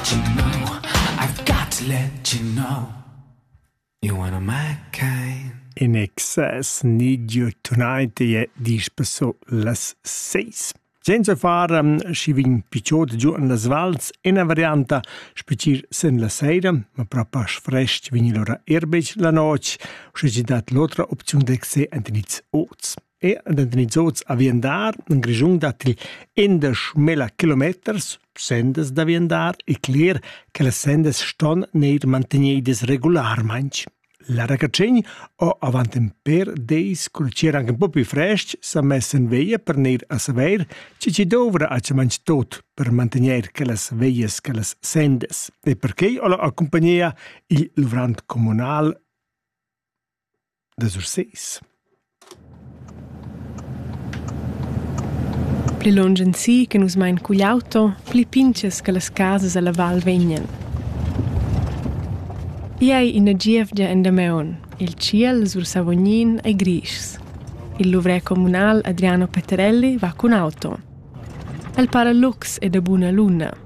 you know, I've got to let you know. You're one of my kind. In excess need you tonight je dispeso las seis. Senza far um, schi vin picciot giù in las vals, ina varianta specis sen la seira, ma propas frest vin lora erbec la noc, sche ci dat l'otra opziun d'exe ent niz oz. e da nizots a viandar en Grischun datti indesch mila kilometers sendas da viandar e cler che las sendas ston neir mantegnidas regularmaing. La racacegn o avant in per deis cul cer anche un po più fresc s'ha mess in veia per neir a saver che ci dovrà a ciamanc tot per mantegner che las veias che las sendas e perché o la accompagnia il luvrant comunal da Surses. Pli lunsch ensi che nus mein cugl auto, pli pintgas che las casas alla val vegnan. Igl ei ina gievgia en Dameun. Il tschiel sur Savognin ei grischs. Il luvrer communal Adriano Peterelli va cun auto. El para lux e da buna luna.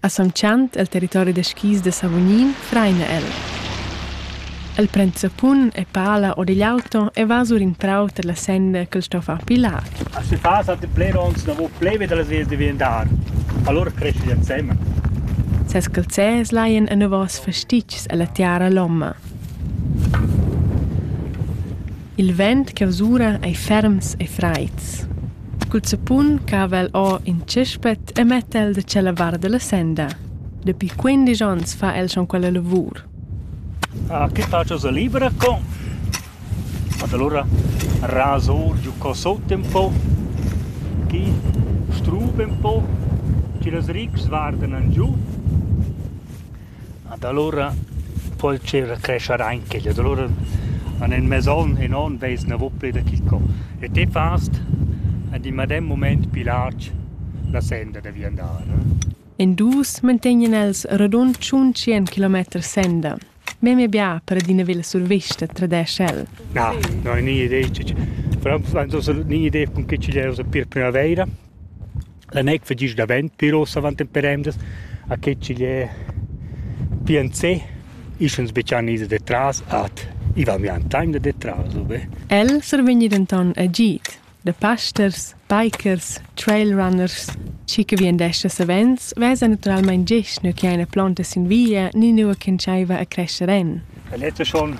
A Son Chant el territori da skis da Savognin traina el. El pren zappun e pala or digl auto e va sur in prau tar la senda ch'el sto far pilar. A se fa satti plerons davo pleve da las vias diventar. Allora cresce instemma. Ses calzers laien enavos fastitgs alla tiara lomma. Il vent che usura ei ferms e freids. cul zappun cava el or in tschespet e metta el da tschella vart dalla senda. Dapi quindisch onns fa el schon quella lavur. Ah, che facio sa libera con? Ma allora raso giù qua sotto un po', chi struba un po', ci las rics guardan giù Ad alura po'l tgira crescher aint quel. Ad alura an ün mez on, ün on vez gnanà pü da quist co. E te fast ad in medem mumaint pü larg la senda da viandar. In dus mantegnan els radund tschun tschient kilometers senda. Memia bia per adina villa survista, tradesch el. Na, no, gnanà ideia, però sto gnanà ideia cun che chi'l era per primavaira. La neiv fagess davent pir ussa avant temperendas, a che ch'igl è pientsé. Isch ans betschan ins da tras ad. I va mian taim da detras ubain. El survegnì denton agid da pasters, bikers, trailrunners. Schi che vien d'esser savens, vesa naturalmein gest nua che ina plonta sin via ni nua ch'entscheiva a crescher en. La letta schon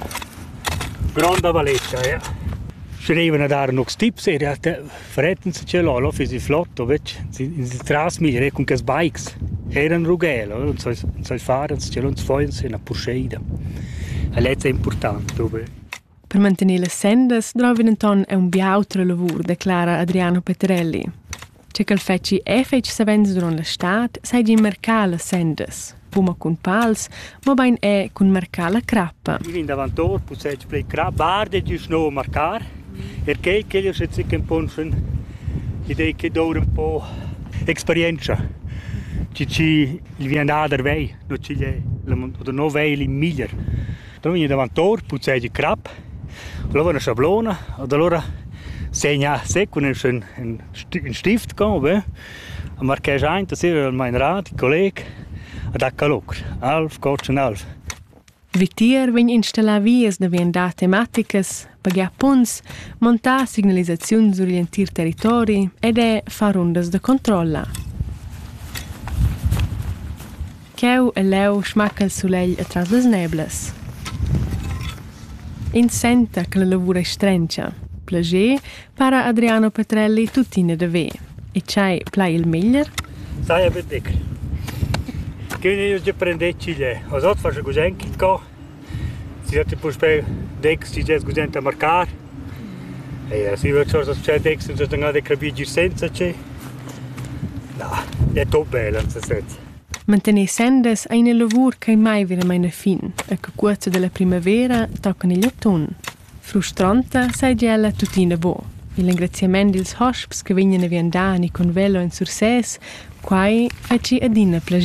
gronda valetta, ja. Schrevene da noch Tipps, in realtà Fred in tschel olo fiss il flotto vetg ins tras mir e cun quels bikes eran rughel ora ins sai far ins tschel uns foins ina purscheida. E lezza è important propi. Per mantener las sendas drovan enton aunc bia autra lavur, declara Adriano Peterelli. Che ch'el fetschi e fetg savens duront la stad seigi marcar las sendas. fuma cun pals, mobein è cun marcar la crappa. I vin davantor, possed plei crappa, arde di sno marcar, er quei che io se zicken ponschen, i dei che doure un po experienza. Ci ci il vien ader vei, no ci è, oder no vei il miglier. Dann vin davantor, possed di crap, la una schablona, od allora segna se con un, un stift con, be, A marquesch aint as ira almain rad, colleg, a dà calur, alv, cotschen alv. Vitier vegn installà vias da viandar tematicas, pagar punts, montar signalisaziun sur l'entir territori ed è far rundas da controlla. Cheu e leu smacca il sulegl atras las neblas. Ins senta che la lavur ei strentscha. Plager para Adriano Petrelli tuttina da ver. E tschei plai il meglier? Saja betg. Che io de prendere Chile. Os ot fas gusent co. Si ti puspei dex ti des gusent a marcar. E si vec sorta c'è dex non se stanga de capir senza ce. No, è top bella, non se sente. Mantener sendas ei ina lavur ch'ei mai veramein a fin e che cuorza dalla primavera tocan igl atun. Frustranta seigi ella tuttina buc. Igl engraziament dils hosps che vegnan a viandar ni con velo en Sursès, quai ei gi adina plascher.